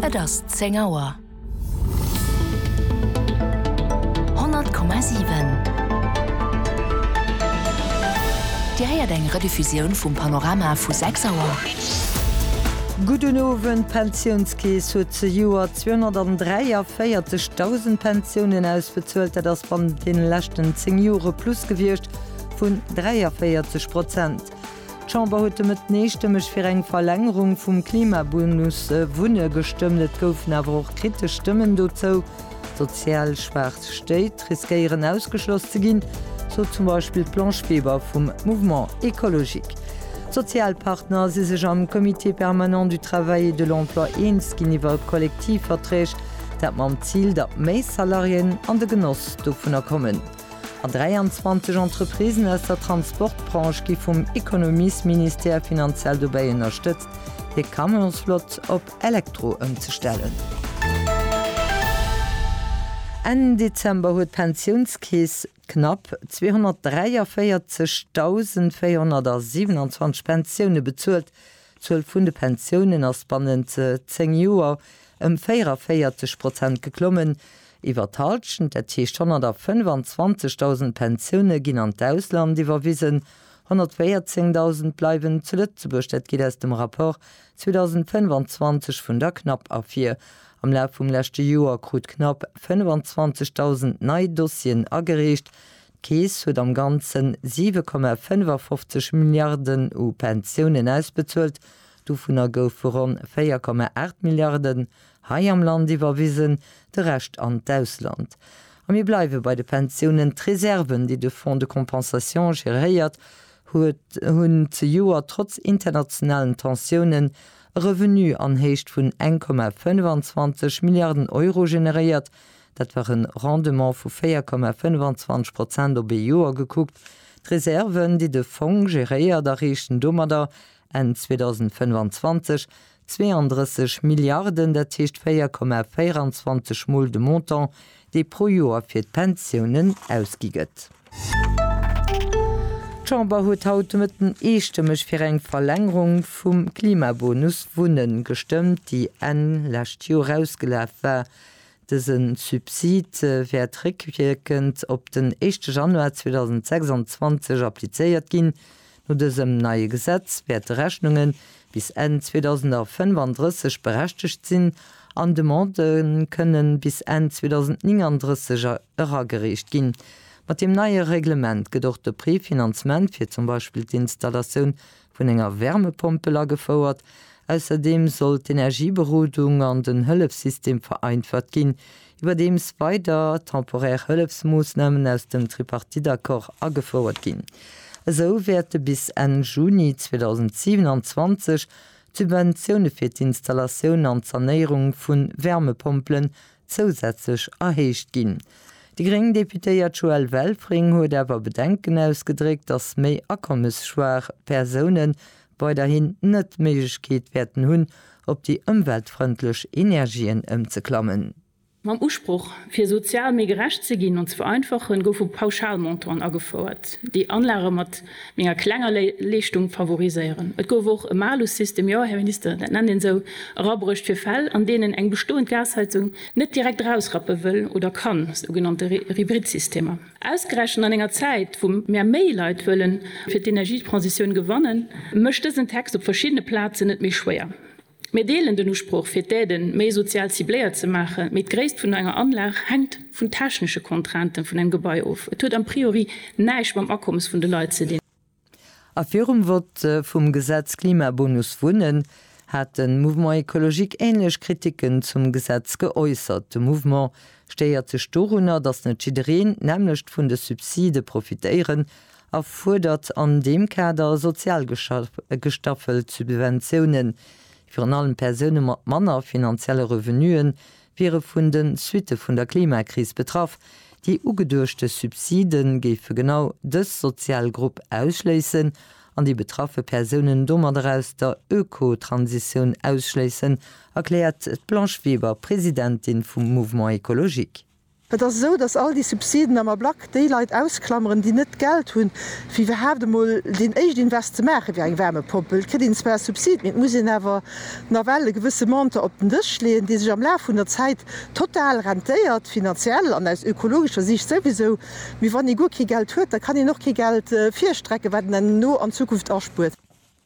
Et ass zéng Auer. Honnert Komma siwen. Dir héiert eng Rediffusioun vum Panorama vu sechs Auer. Gudden Owend, D'Pensiounskeess huet zejoert 243.000 Pensiounen ausbezuelt. Dat ass bannent deene leschten zéng Jore plus gewiescht vun 43 Prozent. D'Chamber huet de Mëtten eestëmmeg fir eng Verlängerung vum Klimabonus Wunne gestëmmt. Et goufen awer och kritesch Stëmmen dozou. Sozial schwaach Stéit riskéieren ausgeschloss ze ginn, sot zum Beispill d'Blanche Weber vum Mouvement écologique. D'Sozialpartner si sech am Comité permanent du travail et de l'emploi eens ginn iwwer Kollektivverträg, dat mam Zil, datt méi Salariéen an de Genoss dovunner kommen. An 23 Entreprisen aus der Transportbranche gi vum Ekonomiesministère finanziell dobäi ënnerstëtzt, hir Camionsflott op Elektro ëmzestellen. Enn Dezember huet d'Pensiounskeess knapp 243.427 Pensioune bezuelt, D'Zuel vun de Pensiounen ass bannent 10 Joer ëm 44 Prozent geklommen, iwwer d'Halschent, dat heescht 125.000 Pensioune ginn an d'Ausland iwwerwisen, 114.000 bleiwen zu Lëtzebuerg. Dat geet aus dem Rapport 2025 vun der CNAP ervir. Am Laf vum leschte Joer krut d'CNAP 25.000 nei Dossieren agereecht, D'Keess huet am Ganzen 7,55 Milliarden u Pensiounen ausbezuelt, dovunner goufe ronn 4,8 Milliarden hei am Land iwwerwisen, de Rescht an d'Ausland. A mir bleiwe bei de Pensiounen, D'Reserven, déi de Fonds de compensation geréiert huet, hunn zejoert trotz internationalen Tensiounen e Revenu an Héicht vun 1,25 Milliarden Euro generéiert, Dat war e Rendement vu 4,25 Prozent op ee Joer gekuckt. D'Reserven, déi de Fong geréiert, erreechten domadder Enn 2025 32 Milliarden, dat heescht 4,24 Mol de Montant, dee pro Joer fir d'Pensiounen ausgi gëtt. D'Chamber huet haut de Mëtten eestëmmeg fir eng Verlängerung vum Klimabonus Wunnen gestëmmt, déi Enn lescht Joer ausgelaf war. Dëse Subsid wäert réckwierkend op den éischte Januar 2026 applizéiert ginn. No dësem neie Gesetz wäerte Rechnunge bis Enn 2035 berechtegt sinn an Demandë kënne bis Enn 2039 eragereecht ginn. Mat deem neie Reglement gëtt och de Préfinancement fir zum Beispill d'Installatioun vun enger Wärmepompel agefouert. Ausserdeem soll d'Energieberodung an den Hëllefssystem vereinfacht ginn, iwwerdeems weider temporär Hëllefsmoossnamen aus dem Tripartite-Accord agefouert ginn. Esou wäerte bis Enn Juni 2027 d'Subventioune fir d'Installatioun an d'Sanéierung vu Wärmepompelen zousätzlech erhéicht ginn. Déi gréng Deputéiert Joëlle Welfring huet awer Bedenken ausgedréckt, datt méi akommesschwaach Persoune weiderhin net d'Méiglechkeet wäerten hunn, op déi ëmweltfrëndlech Energien ëmzeklammen. Mam Usproch, fir sozial méi gerecht ze ginn an ze vereinfachen, goufe Pauschalmontanten agefouert, déi Anlage mat menger klenger Leeschtung favoriséieren. Et gouf och e Malussystem, jo, Här Minister, dat nennt een esou, erabruecht fir Fäll, an deenen eng bestoend Gasheizung net direkt erausrappe wëll oder kann, sougenannte Hybridsystemer. Ausgerechent an enger Zäit, wou mer méi Leit wëllen fir d'Energietransitioun gewannen, mécht dësen Text op verschiddene Plazen et méi schwéier. Mir deelen den Usproch fir d'Aide méi sozial cibléiert ze maachen, mee d'Gréisst vun enger Anlag hänkt vun technesche Contrainten vun engem Gebai of. Et huet a priori näischt mam Akommes vun de Leit ze dinn. A virum Vott vum Gesetz Klimabonus Wunnen hat de Mouvement Ecologique änlech Kriticken zum Gesetz geäussert. De Mouvement stéiert sech dorunner, datt net jiddereen d'nämmlecht vun de Subside profitéieren a fuerdert an deem Kader sozial gestaffelt Subventiounen. Virun allem Persoune mat manner finanzielle Revenue wiere vun de Suitte vun der Klimakris betraff. Déi ugeduechte Subside géife genau dës sozial Grupp ausschléissen an déi betraffe Persounen domadder aus der Ökotransitioun ausschléissen, erkläert d'Blanche Weber, Presidentin vum Mouvement Ecologique. Et ass esou, datt all déi Subsiden am Ablack déi Leit ausklameren, déi net d'Geld hunn, fir iwwerhaapt emol deen éischt Invest ze maachen, wéi eng Wärmepompel. Et kritt een zwar e Subsid, mee et muss een awer nawell e gewësse Montant op den Dësch leeën, dee sech am Laf vun der Zäit total rentéiert, finanziell an aus ökologescher Siicht souwisou. Mee wann ee guer kee Geld huet, da kann een och kee Geld virstrecken, wat een herno an Zukunft aspuert.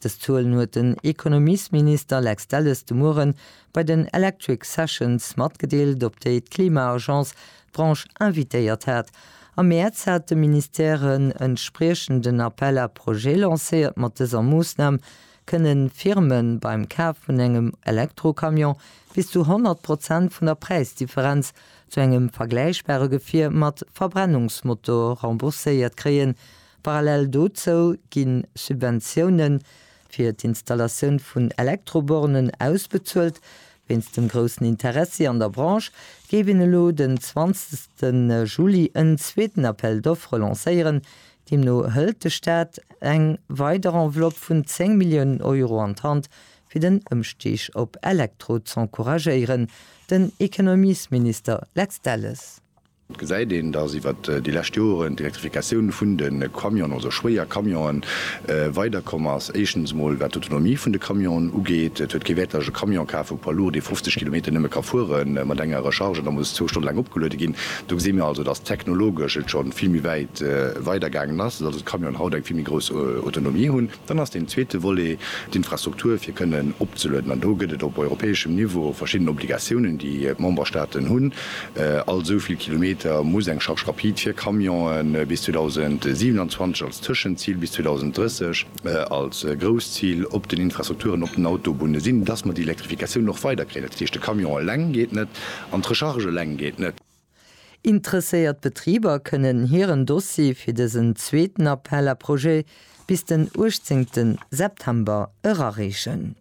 Dës Zuelen huet den Ekonomiesminister Lex Delles de Mueren bei den Electric Sessions matgedeelt, op déi d'Klima-Agence d'Branche invitéiert hat. Am Mäerz hat de Ministère en entspriechenden Appel à projets lancéiert. Mat dëser Moossnam kënne Firme beim Kaf vun engem Elektrocamion bis zu 100 Prozent vun der Präisdifferenz zu engem vergläichbare Gefier mat Verbrennungsmotor rembourséiert kréien, Parallel dozou gi Subventioune fir d'Installatioun vun Elektrobornen ausbezuelt. Wéinst dem groussen Interessi an der Branche géif een elo den 20 Juli en zweeten Appel d'offres lancéieren. Deemno hëlt de Staat eng weider Enveloppe vun 10 Milliounen Euro an d'Hand, fir den Ëmstig op Elektro z'encouragéieren. Den Ekonomiesminister Lex Delles. Et gesäit een, dass iwwert déi lescht Joren d'Elektrifikatioun vun de Camionen, also schwéier Camionen, weider komm ass. Éischtens emol wat d'Autonomie vun de Camionen ugeet. Et huet kee Wäert, datt ech e Camion kafen, e Poids lourd, dee 50 Kilometer nëmme ka fuere mat enger Recharge an da muss zwou Stonne laang opgeluede ginn. Do gesi mir also, dass technologesch et scho vill méi wäit weidergaangen ass, dass also d'Camionen haut eng vill méi grouss Autonomie hunn. Dann ass deen zweete Volet d'Infrastruktur, fir kënnen opzelueden. An do gëtt et op europäeschem Niveau verschidden Obligatiounen, déi d'Memberstaaten hunn. All esou vill Kilometer muss eng Charge rapide fir Camionen bis 2027 als Tëschenzil, bis 2030 als grousst Zil op den Infrastrukturen op den Autobunne sinn, dass mer déi Elektrifikatioun och weiderkréien. Dat heescht, de Camion eleng geet net an d'Recharge eleng geet net. Interesséiert Betriber kënnen hiren Dossier fir dësen zweeten Appel à projets bis den 18 September erareechen.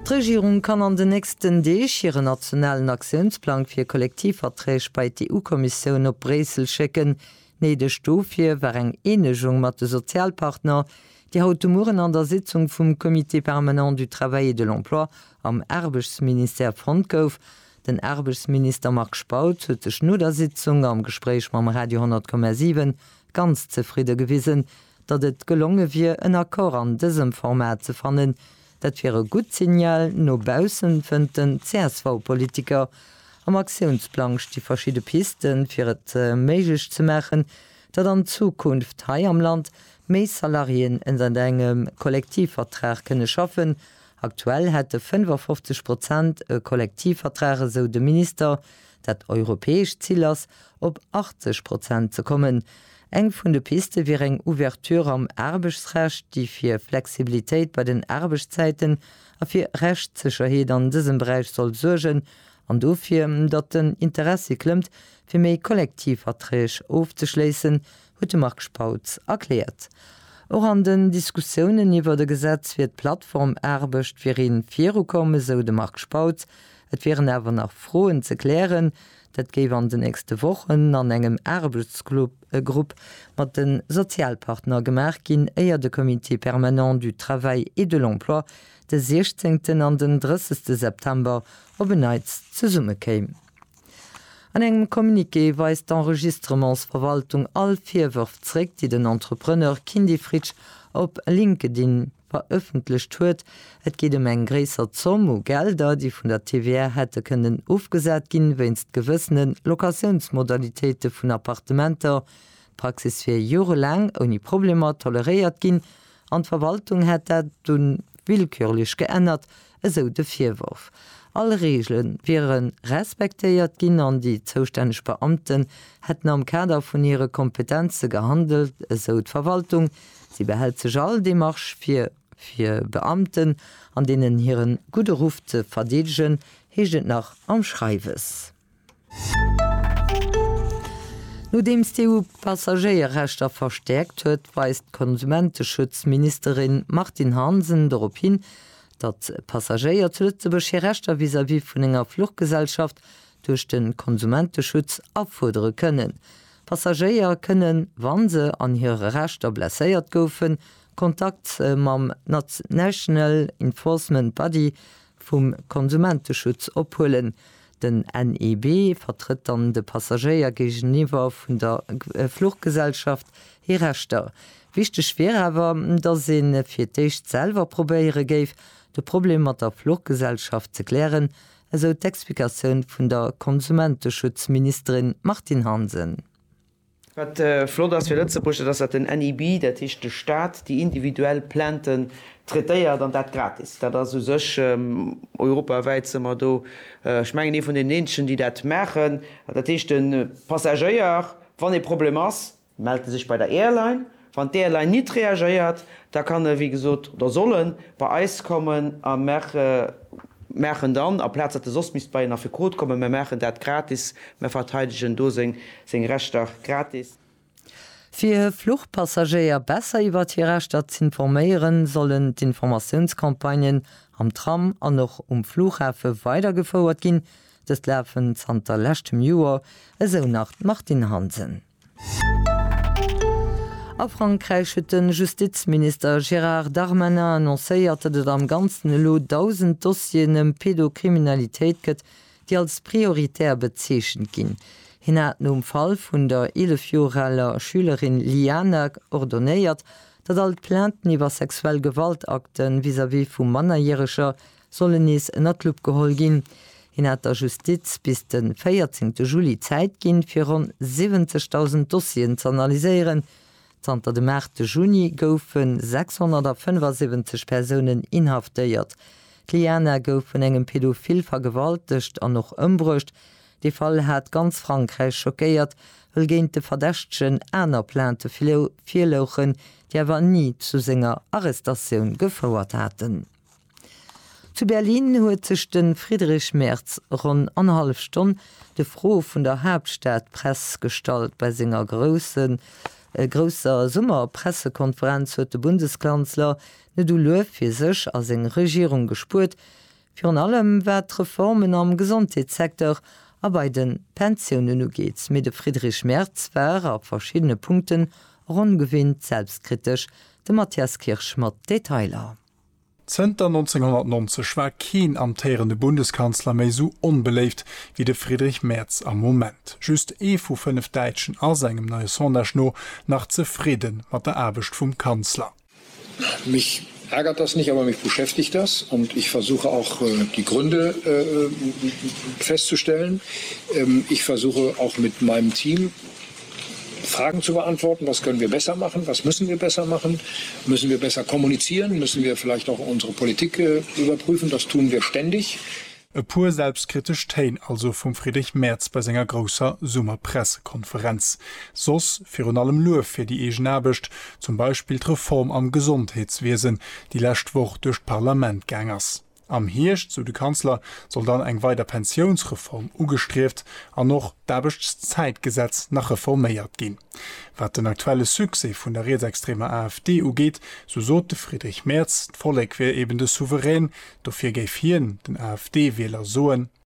D'Regierung kann an den nächsten Deeg hiren nationalen Aktiounsplang fir Kollektivverträg bei d'EU-Kommissioun op Bréissel schécken. Néideg dofir war eng Eenegung mat de Sozialpartner, déi haut de Mueren an der Sitzung vum Comité permanent du travail et de l'emploi am Aarbechtsministère fonnt gouf. Den Aarbechtsminister Marc Spautz huet sech no der Sitzung am Gespréich mam Radio 10,7 ganz zefridde gewisen, datt et gelonge wier en Accord an dësem Format ze fannen. Dat wier e gutt Signal no baussen, fënnt den CSV-Politiker. Am Aktiounsplang sti verschidde Piste fir et méiglech ze maachen, datt an Zukunft hei am Land méi Salariéen ënnert engem Kollektivvertrag kënne schaffen Aktuell hätte 55 Prozent e Kollektivvertrag, esou de Minister. Dat europäescht Zil ass, op 80 Prozent ze kommen. Eng vun de Piste wier eng Ouverture am Aarbechtsrecht, déi fir Flexibilitéit bei den Aarbechtszäiten a fir Rechtssécherheet an dësem Beräich soll suergen an dofir, datt den Interessi klëmmt, fir méi Kollektivverträg ofzeschléissen, huet de Marc Spautz erkläert. Och an den Diskussiounen iwwert e Gesetz fir d'Plattformaarbecht wier ee virukomm, esou de Marc Spautz. Et wieren awer nach Froen ze klären. Dat géif an den nächste Wochen an engem Aarbechtsgrupp mat de Sozialpartner gemaach ginn, éier de Comité permanent du travail et de l'emploi de 16 an den 30 September op en Neits zesummekéim. An engem Communiqué weist d'Enregistrements-Verwaltung all Virwërf zréck, déi den Entrepreneur Kindy Fritsch op LinkedIn verëffentlecht huet. Et geet ëm eng gréisser Zomm u Gelder, déi vun der TVR hätte kënnen ofgesat ginn, wéinst gewëssene Locatiounsmodalitéite vun Appartementer. D'Praxis wier jorelaang ouni Problemer toleréiert ginn, An d'Verwaltung hätt dat dunn willkürlech geännert, esou de Virworf. All Reegele wiere respektéiert ginn an déi zoustänneg Beamten hätten am Kader vun hire Kompetenze gehandelt, esou d'Verwaltung. Si behält sech all Demarche vir, fir Beamten an deenen hire gudde Ruff ze verdeedegen, heescht et nach am Schreiwes. Nodeems d'EU d'Passagéierrechter verstäerkt huet, weist d'Konsumenteschutz-Ministerin Martine Hansen dorop hin, datt d'Passagéier zu Lëtzebuerg hir Rechter vis-à-vis vun enger Fluchgesellschaft duerch de Konsumenteschutz afuerdere kënnen. Passagéier kënnen, wa se an hire Rechter blesséiert goufen, Kontakt mam National Enforcement Body, vum Konsumenteschutz ophuelen. Den NEB vertrëtt dann de Passagéier géigeniwwer vun der Fluchgesellschaft hir Rechter. Wichteg wier awer, datt ee fir d'éischt selwer probéiere géif, de Problem mat der Fluchgesellschaft ze klären, esou d'Explikatioun vun der Konsumenteschutzministerin Martine Hansen. Wat flott ass fir Lëtzebuerg, dat ass, datt den NIB, dat heescht de Staat, déi individuell Plainten traitéiert, an dat gratis. Dat ass u sech, europawäit si mer do, ech mengen, ee vun den eenzegen, déi dat maachen. Dat heescht, de Passagéier, wann e Problem ass, mellt e sech bei der Airline, Wann d'ALy nit reagéiert, da kann e wéi gesot, oder soll en, bei eis kommen a mer maachen dann, aplaz datt e soss misst bei een Affekot kommen, mer maachen dat gratis, mer verteidegen do seng Rechter gratis. Fir e Fluchpassagéier besser iwwert hir Rechter z'informéieren, sollen d'Informatiounscampagnen am Tram an och um Flughafe weidergefouert ginn. Dëst lafen zanter leschtem Joer, esou nach d'Martine Hansen. A Frankräich huet de Justizminister Gérard Darmanin annoncéiert, datt et am Ganzen elo 1.000 Dossieren ëm Pedokriminalitéit gëtt, déi als prioritär bezeechent ginn. Hien hat nom Fall vun der 11 Joer aler Schülerin Liana ordonéiert, datt all d'Plainten iwwer sexuell Gewaltakte vis-à-vis vu Mannerjäreger sollen nees ënner d'Lupp geholl ginn. Hien hat der Justiz bis de 14 Juli Zäit ginn, fir ronn 70.000 Dossieren ze analyséieren. Zanter dem 8 Juni goufe 675 Persounen inhaftéiert. D'Liana gouf vun engem Pädophil vergewaltegt an och ëmbruecht. Dee Fall hat ganz Frankräich schockéiert, wëll géint de Verdächtegen aner Plainte virlouchen, déi awer ni zu senger Arrestatioun gefouert haten. Zu Berlin huet sech de Friedrich Merz ronn annerhallef Stonn de Froe vun der Haaptstadpress gestallt. Bei senger grousser Summerpressekonferenz huet de Bundeskanzler net u Luef fir sech a seng Regierung gespuert, virun allem wat d'Reformen am Gesondheetssecteur a bei de Pensiounen ugeet. Mee de Friedrich Merz war a verschiddene Punkten och ongewinnt selbstkritesch. De Matthias Kirsch mat Detailer. Zënter 1990 war keen amtéierende Bundeskanzler méi esou onbeléift wéi de Friedrich Merz am Moment. Just ee vu fënnef Däitschen ass, engem neie Sondage no, nach zefridde mat der Aarbecht vum Kanzler. Mich ärgert das nicht, aber mich beschäftigt das und ich versuche auch die Gründe festzustellen. Ich versuche auch mit meinem Team Fragen zu beantworten, Was können wir besser machen? Was müssen wir besser machen? Müssen wir besser kommunizieren? Müssen wir vielleicht auch unsere Politik überprüfen? Das tun wir ständig. E puer selbstkritesch Téin also vum Friedrich Merz bei senger grousser Summer-Pressekonferenz. Soss virun allem Luef fir déi eegen Aarbecht, zum Beispill d'Reform am Gesondheetswiesen, déi lescht Woch duerch d'Parlament gaang ass. Am Hierscht, sou de Kanzler, soll dann eng weider Pensiounsreform ugestrieft an och d'Aarbechtszäitgesetz nach reforméiert ginn. Wat den aktuelle Succès vun der rietsextremer AfD ugeet, sou sot de Friedrich Merz, d'Vollek wier eben de Souverän. Dofir géif hien den AfD-Wieler soen.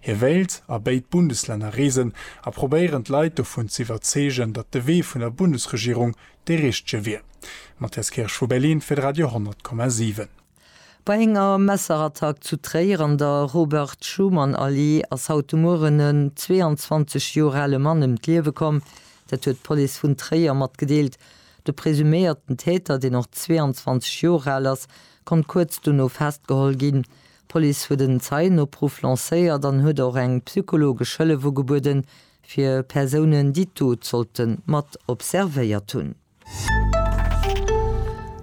Hie wéilt a béid Bundeslänner reesen a probéieren d'Leit dovun ze iwwerzeegen, datt de Wee vun der Bundesregierung dee richtege wier. Matthias Kirsch vu Berlin fir d'Radio 10,7. Bei enger Messerattack zu Tréier an der Robert-Schuman-Allee ass haut de Mueren en 22 Joer ale Mann ëm d'Liewe komm. Dat huet d'Police vun Tréier matgedeelt. De presuméierten Täter, deen och 22 Joer al ass, konnt kuerz dono festgeholl ginn. D'Police huet en Zeienopruff lancéiert an huet och eng psychologesch Hëllef ugebueden, fir Persounen, déi d'Dot sollte mat observéiert hunn.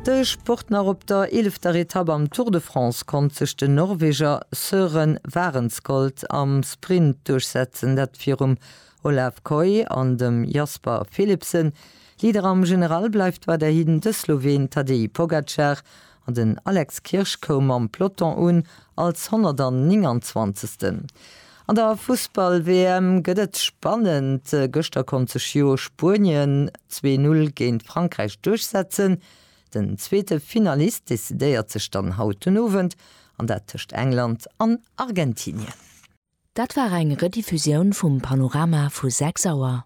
De Sport nach, Op der eelefter Etapp am Tour de France konnt sech den Norweger Søren Wahrenskold am Sprint duerchsetzen, dat virum Olav Kooij an dem Jasper Philipsen. Leader am General bleift weiderhin de Sloween Tadej Pogacar, An den Alex Kirsch koum mam Peloton un als 129. An der Fussball-WM gëtt et spannend. Gëschter konnt sech jo Spuenien zwee Null géint Frankräich duerchsetzen. Den zweete Finalist decidéiert sech dann haut den Owend, an dat tëscht England an Argentinien. Dat war eng Rediffusioun vum Panorama vu 6 Auer.